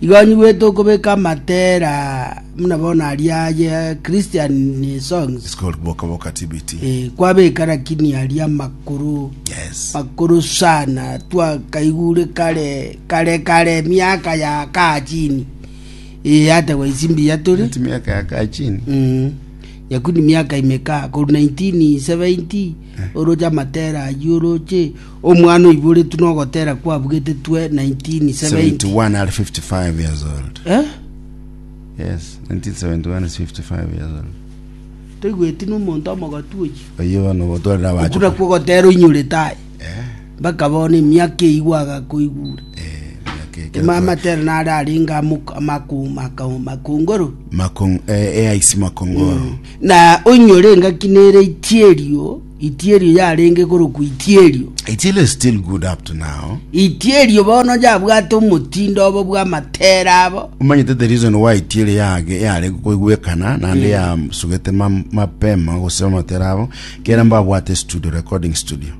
Igo anyigwete okobeka amatera buna bono aria aye Christian songs. It's called Boka Boka TBT. Eh, kwabeka lakini aria amakuru Yes. makuru sana twakaigure kare kare kare miaka ya kaa chini Eh, hata kwa isimbi ya turi Eti miaka ya kaa chini. Mm. yakuni miaka imekaa koru 1970 oroche amatera ayi oroche Omwana oiboretwe nogotera kwabugete 1971 toigweti nomonto omogoti oyio. Oku nakwo ogotera oinyorete aye. Mpaka bono emiaka eyigwo agakoigure. Emama tera nare arenge amakongoro. Makong, eh, eh, aisi makongoro. Na oinyore engaki nere chierio. Itierio yarenge korokwa itierio. Itielo is still good up to now. Itierio bono yabwate omotindo obo bw'amatera abo. Omanyete the reason why itielo yage yarenge koigwekana naende yasugete mam- mapema gose amatera abo kera mbabwate studio recording studio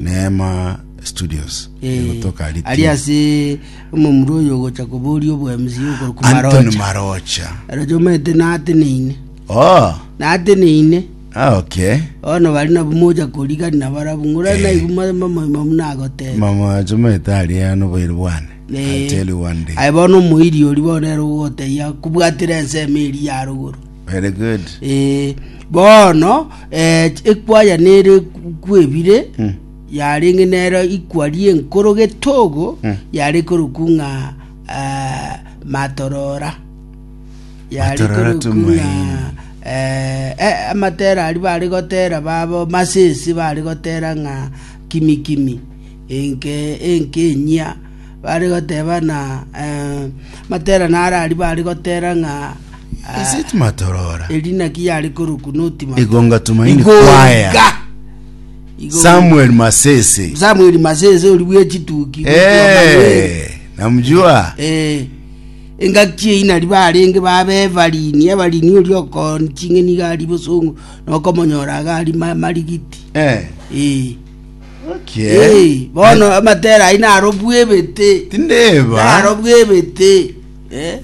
neema studios egotoka ari Ritini. ase omomura oyo ogocha koboria obwemisi okorokwa antony marocha marocha aroche omanyete nateneine oh nateneine Okay. Bono bare nabwo mocha korigani nabarabwo, ng'ora Eh. naigwe mwa- mwa- mwa- mwa- muna agoteba. Mama chumete ari ano boire bwane. I tell you one day. aye bono omoiri ori bono ero ogoteyia kobwatera ensemo eri ya rogoro Very good. Eh, bono eh, ekwaya nere kwebire Mm. yarenge nero ikwari enkoro getogo Mm. yare korokung'a ah, matorora Yare Batorora torukuria tomaini. eh, eh, amatera ari bari gotera babo masisi bari gotera ng'a kimi kimi enke enke enyia bari goteba na eh, matera nara ari bari gotera ng'a ah, Is it Matorora? erina ki yari koruku notima Igonga Tumaini Choir. Samuel Masese. Samuel Masese uri bwechituki Eh, namjua. eh Engaki eyio nario barenge bab'ebarini, ebarini oria okooni ching'eni iga ari bosongo, na okomonyora iga ari amarigiti. Eh, Ee, gaki ee, eh. bono amatera ayio narobue ebete, Tindeba. narobue ebete. Eh.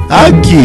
Gaki.